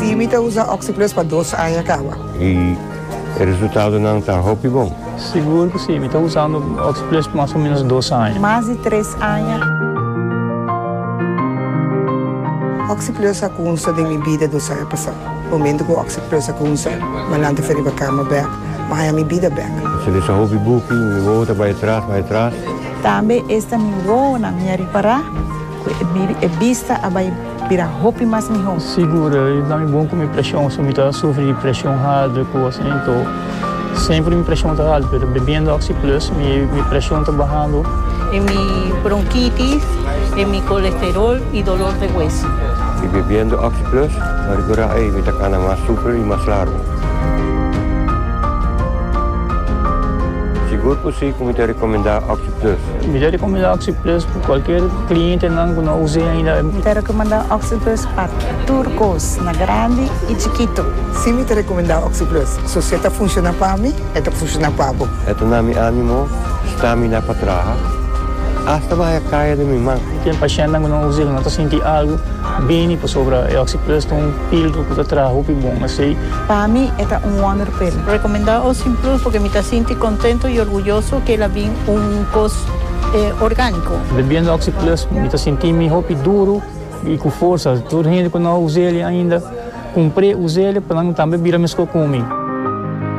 Sí, mi ta usa Oxi-Plus pa dos aña kawa. I e resultadonan ta hopi bon? Sigur ku sí, mi ta usando Oxi-Plus pa mas o ménos dos aña. Mas di tres aña. Oxi-Plus a kunsa den mi bida dos aña pasá. Momentu ku Oxi-Plus a kunsa, mi a lanta fen riba kama bèk, mi a haña mi bida bèk. Esei ta hopi buki, mi wowo ta bai atras, bai atras. Tambe esta mi wowonan mi a ripará ku e bista a bai bira hopi mas mihó. Sigur, i ta mi bon ku mi preshon, si mi ta sufri di preshon haltu i kos así, enton semper mi preshon ta haltu, pero bebiendo Oxi Plus mi preshon ta bahando. E mi bronkitis, e mi kolesterol i dolor de hueso. I bebiendo Oxi Plus mi a rekurá, ei, mi ta kana mas super i mas largu. Sigur ku si. Mi ta recomenda Oxyplus. Mi ta recomenda Oxyplus pa cualkier clientenan cu no a us'e ainda. Mi ta recomenda Oxyplus pa tur cos, na grandi y chikito. Si, mi ta recomenda Oxyplus. So si e ta funciona pa mi, e ta funciona pa bo. E ta na mi animo, stamina pa traha, hasta maya caya den mi man. Ten pacientnan cu no a us'e, cu no ta sinti algo bini pasobra e Oxyplus ta un. Pildo ku ta traha hopi bon asei. Pa mi e ta un wonder pil. Recomenda Ocean Plus porque mi ta sinti contento y orguyoso que el a bin un cos organico. Bebiendo Oxi Plus mi ta sinti mi hopi duro y cu forsa. Tur hende cu no a usa el ainda, cumpre, usa el pa nan tambe bira mesco cu mi.